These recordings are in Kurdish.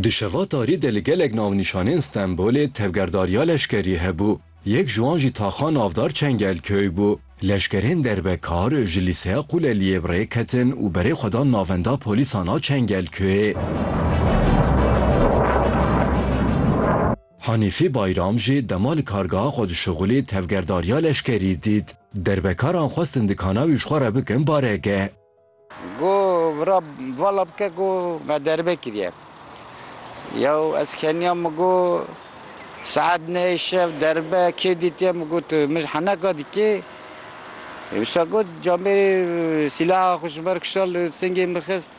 Di şeva tarî de li gelek navnîşanên Stenbolê tevgerdariya leşkerî hebû. Yek ji wan jî taxa navdar Çengelköy bû. Leşkerên derbekar ji lîseya Qûleliyê bi rê ketin û berê xwe dan navenda polîsan a Çengelköyê. Hanîfî Bayram jî dema li kargeha xwe dişuxulî tevgerdariya leşkerî dît. Derbekaran xwestin dikana wî ji xwe re bikin baregeh. Go vira vala bike ku me derbe kiriye. Yew ez keniya min go saet neyê şev derbe kê dîtiye min got tu min ji heneka dikê. Wisa got camêrê sîlaha xwe ji ber kişand li singê min xist.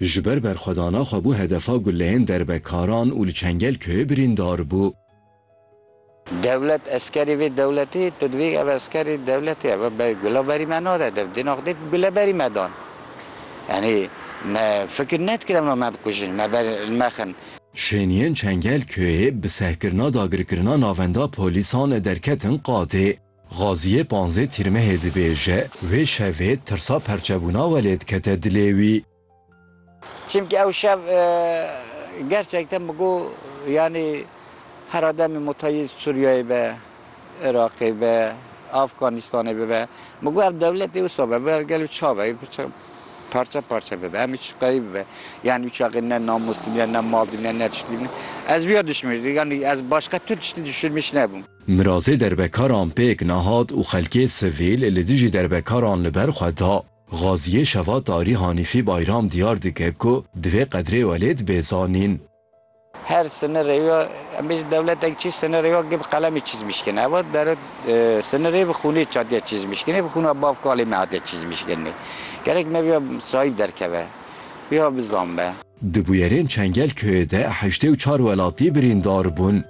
Ji ber berxwedana xwe bû hedefa guleyên derbekaran û li Çengelköyê birîndar bû. Dewlet eskerî vê dewletî, tu dibî ev eskerî dewletî ev e berî gula berî me nade dev dê nexdê tu gule berî me dan. Yanî me fikir nedikir em ê me bikujin, me ber li me xin. Şêniyên Çengelköyê bi sehkirina dagirkirina navenda polîsan derketin qadê. Xaziyê panzdeh Tîrmehê dibêje, wê şevê tirsa perçebûna we lê dikete dilê wî. Çimkî ew şev gerçekten bi got yanî hera demê motayî Sûriyeyê be, Iraqê be, Afganîstanê bibe, bi got ev dewletê wisa be, bi got gelo ça be, parçe parçe bibe, em hiç qeyî bibe. Yanî çaxê ne namûs dimîne, ne mal dimîne, ne tişt dimîne. Ez wiya dişimîrdim, yanî ez başqa tu tiştî dişirmîş nebûm. Mirazê derbekaran pêk nehat û xelkê sivîl li dijî derbekaran li ber xwe da. Xaziyê Şeva Tarî Hanîfî Bayram diyar dike ku divê qedrê we lê dibe zanîn. Her sinirê ya, em bêjin dewletek çi sinirê ya gi bi qelemê çizmişkin. Ev a dere sinirê bi xûnê hatiye çizmişkinê, bi xûna bav kalê me hatiye çizmişkinê. Gerek me vêya sahîb derkeve, vêya bizanbe. Di bûyerên Çengel köyê de heştê û çar welatî birîndar bûn.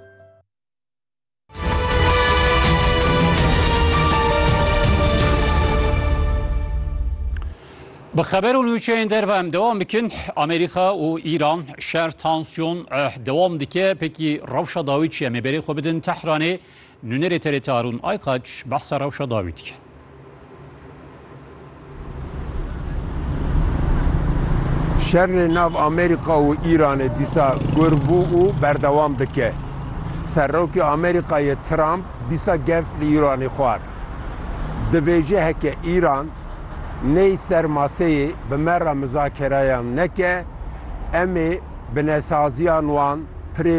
Bi xeber û nûçeyên derve em dewam bikin Amerîka û Îran şer tansiyon eh, dewam dike pekî rewşa dawî çi em ê berê xwe bidin Tehranê nûnerê TRT Arûn Aykaç behsa rewşa dawî dike. Şerê nav Amerîka û Îranê dîsa gur bû û berdewam dike. Serokê Amerîkayê Trump dîsa gev li Îranê xwar. Dibêje heke Îran ney ser maseyê bi me re mizakereyan neke, em ê binesaziyan wan pirê